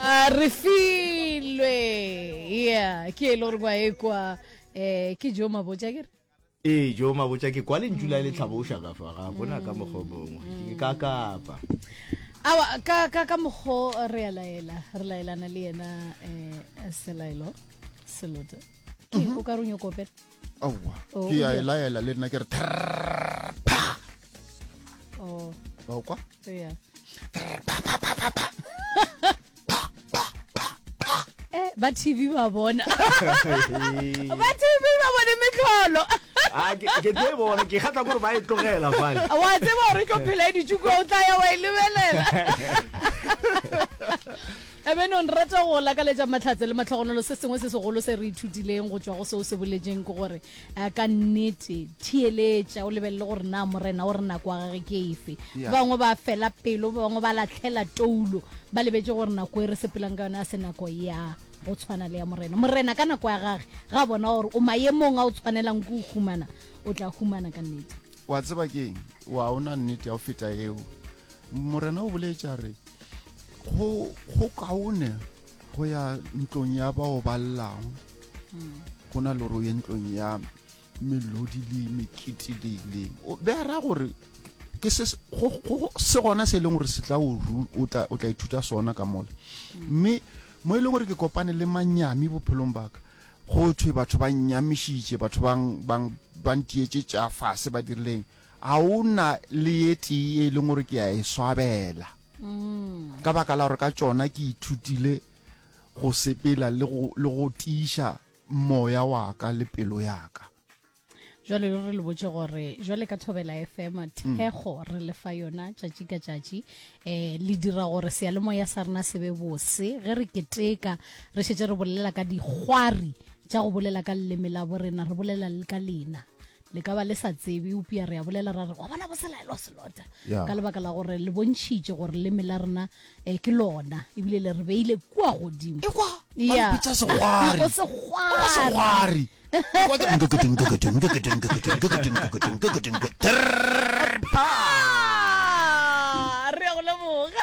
Ah, re filwe yeah ke e le gore ba e kwa um ke jo mabotja kere ee jo mabotja ke kwa lentšu la e le tlhaboša ka fa ga gona ka mokgwa o mongwe ke ka kapa awa ka ka ka mokgo re a laela re laelana le yena um selaelo selote ke o ka re o nyoko opela aowa oh, ke a e laela le nna ke re oh. okwa eh, ba tv ba bona ba tv ba bone metlholo Ah, ke tsebo gore ke kgatla gore ba e tlogela fale wa tseba gore tlo phela e ditšuko o tla ya wa e lebelela Ebenong rata go go lakaletša mahlatse le mahlogonolo. Se sengwe se segolo se re ithutileng go tšwa go se o se boletšeng ke gore eh, ka nnete theeletša o lebelele gore na Morena o re nako ya gage ke efe. Yeah. Ba bangwe ba fela pelo, ba bangwe ba latlhela toulo, ba lebetše gore nako e re sepelang ka yona ya se nako ya go tshwana le ya Morena. Morena ka nako ya gage ga a bona gore o maemong a o tshwanelang ke o humana, o tla humana ka nnete. wa tseba keng wa ona nnete ya go feta eo Morena o boletša re go go kaone go ya ntlong ya bao ba llago hmm. go na le gore o ye ntlong ya melodi le mekete le ileng be a raya gore ke se gona se e leng gore se tla o tla ithuta sona ka mole mme mo e leng gore ke kopane le manyami bophelong baka go thwe batho ba nyamišitše batho bang bang ba ntietse tša fase ba dirileng Ga go na le ye tee ye e leng gore ke a e swabela, ka baka la gore ka tšona ke ithutile go sepela le go tiiša moya wa ka le pelo ya ka. Jwale lo re le botše gore jwale ka Thobela FM thekgo re le fa yona tšatši ka tšatši, um le dira gore seyalemoya sa rena se be bose. Ge re keteka re šetše re bolela ka dikgwari tša go bolela ka leleme la borena, re bolela le ka lena. le ka ba le sa tsebe eupša re a bolela ra re wa bona bo selaelwa selota yeah. ka lebaka la gore le bontšhitše gore leme la rena um ke lona ebile le re beile kua godimo re ya go leboga